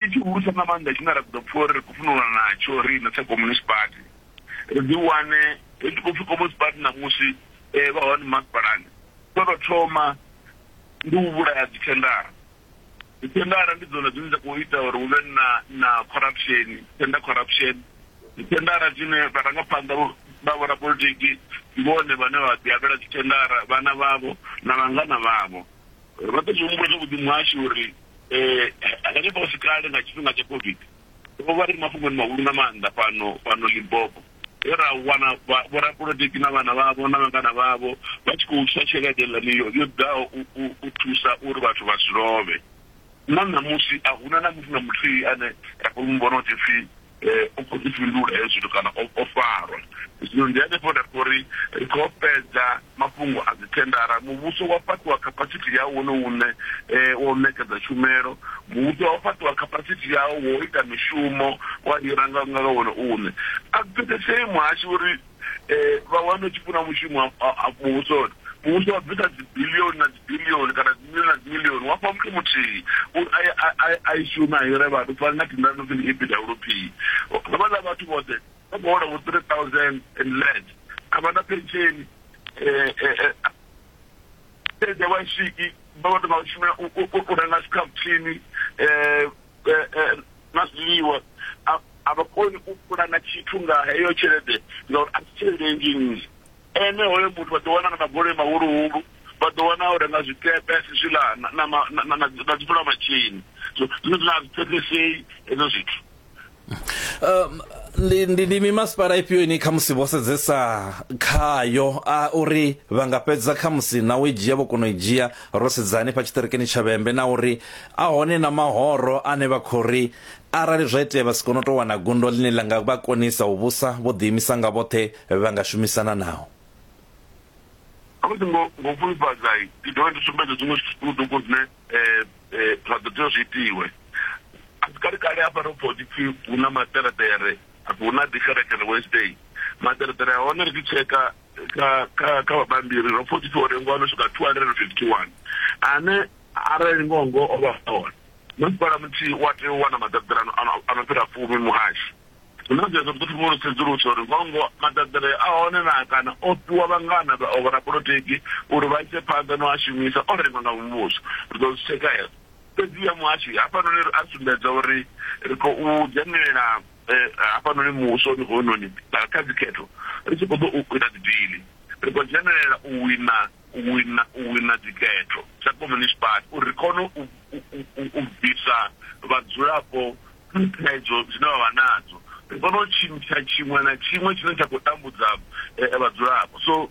Ndi tshihulusa nga maanḓa tshine ra ḓo pfa uri ri khou fhindulana natsho riṋe sa Communist Party, ri ḓiwane ri tshi khou pfi Communist Party ṋamusi vha hone masipalani. Tsho tou thoma ndi u vhulaya dzithendara. Dzithendara ndi dzone dzine dza khou ita uri hu vhe na na corruption, tender corruption. Dzithendara dzine vharangaphanḓa vha vhorapolitiki ndi vhone vhane vha ḓiavhela dzithendara, vhana vhavho na vhangana vhavho. Ro ḓo zwi humbula zwavhuḓi muhashi uri hanefha hu si kale nga tshifhinga tsha COVID ro vha ri mafhungoni mahulu nga maanḓa fhano fhano Limpopo he ra wana vhorapolotiki na vhana vhavho na vhangana vhavho vha tshi khou tswa tshelede ḽani yo yo ḓaho u thusa uri vhathu vha si lovhe na ṋamusi a huna na muthu na muthihi ane ra khou mu vhona u ḓipfhi u khou ḓi fhindula hezwi zwithu kana o farwa. Zwino ndi hanefho nda pfa uri ri khou fhedza mafhungo a dzithendara. Muvhuso wa fhaṱiwa khapasithi yawo wone uṋe wa u ṋekedza tshumelo. Muvhuso wa fhaṱiwa khapasithi yawo wa u ita mishumo, wa hira nga wone uṋe. A zwi pfesesei muhashi uri. eh, vha wane tshi funa mushumo muvhusoni muvhuso wa bvisa dzibilioni na dzibilioni kana dzimilioni na dzimilioni wa fha muthu muthihi uri a i shume a hire vhathu fani na tindani no pfi ndi epwp havhaḽa vhathu vhoṱhe vha khou hola vho three thousand and less a vha na pensheni tshelede wa swiki vha vha tou vha shumela u renga scaftini um na zwiḽiwa a a vha koni u pulana tshithu nga heyo tshelede ngauri a si tshelede nnzhi nnzhi ene hoyo muthu vha ḓo wana na magoloi mahuluhulu vha ḓo wana u renga zwikepe zwiḽa na dzivula matshini zwine zwine a zwi pfesesei hezwo zwithu um ndi ndi ndi mimasipala ifhio ine kha musi vho sedzesa khayo a uri vha nga fhedza kha musi na u i dzhia vho kona u i dzhia ro sedzani pa tshiṱirikini tsha vhembe na uri a hone na mahoro ane vha khou ri arali zwa itea vha si kone u tou wana gundo ḽine ḽa nga vha konisa u vhusa vho ḓiimisa nga vhoṱhe vha nga shumisana nao musi ngo ngo fhulufhadza ndi dovha ndi sumbedza zwiṅwe zwiṱukuṱuku zwine eh, eh, zwa ḓo tea zwi itiwe a si kale kale hafha ro pfha hu tshi pfhi hu na maṱereṱere hu na ḓi kerekele wednesday maṱereṱere a hone ri tshi tsheka ka ka ka vhabambiri ro pfha tshipfi uri ngoho no swika 251 ane arali ngoho ngoho o vha hone masipala muthihi wa tea u wana maḓaḓirano a no fhira fumi muhashi zwino zwezwo ri ḓo thoma uri sedzuluso uri ngoho ngoho maḓaḓire a hone na kana o fhiwa vhangana o vhorapolotiki uri vha ise phanḓa no a shumisa o rengwa nga muvhuso ri ḓo zwi tsheka hezwo fhedzi ya muhashi hafhanoni a sumbedza uri ri khou dzhenelela eh, hafhanoni muvhusoni hounoni kha dzikhetho ri tshi khou ḓo u ita dzidili ri khou dzhenelela u wina u wina u wina dzikhetho sa communist party uri ri kone u bvisa vhadzulapo thaidzo dzine vha vha nadzo ri kone u tshintsha tshiṅwe na tshiṅwe tshine tsha khou tambudza eh, vhadzulapo so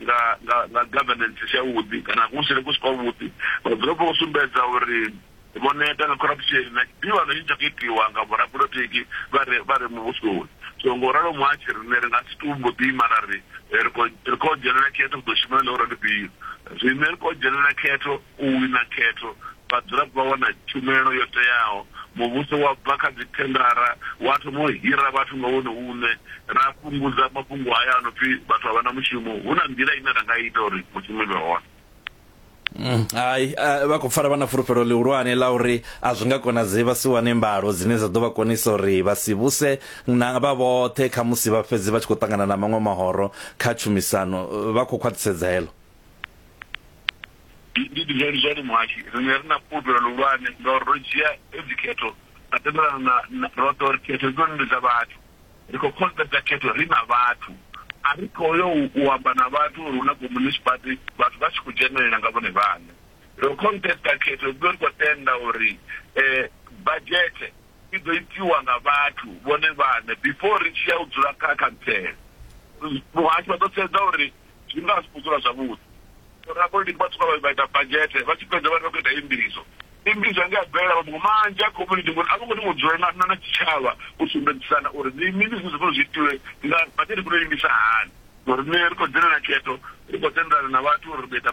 nga nga nga governance si yavhuḓi kana kuhusele ku si kwavhuḓi vhadzulapo vho sumbedza uri vho neta nga corruption na tshivhano tshine tsha khou itiwa nga vhorapolotiki vha re vha re muvhusoni so ngo ralo muhatshi riṋe ri nga si tou mbo ḓi mara ri ri khou dzhenelela khetho ri ḓo shuma na ḽa uri ndi fhio zwine ri khou dzhenelela khetho U wina khetho, vhadzulapo vha wana tshumelo yo teaho, muvhuso wa bva kha dzithendara wa thoma u hira vhathu nga wone uṋe, ra fhungudza mafhungo haya a no pfi vhathu a vha na mushumo. Hu na nḓila ine ra nga ita uri mushumo i vhe hone. Hai, vha khou pfala vha na fulufhelo ḽihulwane ḽa uri a zwi nga konadzei vha si wane mbalo dzine dza ḓo vha konisa uri vha si vhuse na vha vhoṱhe khamusi vha fhedze vha tshi khou ṱangana na maṅwe mahoro kha tshumisano. Vha khou khwaṱhisedza heḽo. ndi ndi zwa ndi zwone muhashi riṋe ri na fhulufhelo luhulwane ngauri ro dzhia hedzi khetho ra tendelana na- na- roṱhe uri khetho hedzinoni ndi dza vhathu ri khou khonṱedza khetho ri na vhathu a ri khou yo u- u amba na vhathu uri hu na communist party vhathu vha tshi khou dzhenelela nga vhone vhaṋe ro khonṱedza khetho hedziḽo ri khou tenda uri um badzhethe i ḓo itiwa nga vhathu vhone vhaṋe before ri tshi ya u dzula kha khantsela muhasho vha ḓo sedza uri zwine vha nga si khou dzula zwavhuḓi rapolitiki vha swika vha ita badzhete vha tshi fhedza vha ri vha khou ita imbizo imbizo ange a bvelela mafhungo manzhi a community ngori a vho ngo thoma u dzula na na tshitshavha u sumbedzisana uri ndi mini zwine zwa fanela zwi itiwe nga badzhete khou imbisa hani ngori nṋe ri khou dzhenelela khetho ri khou tendelana na vhathu uri ri ḓo ita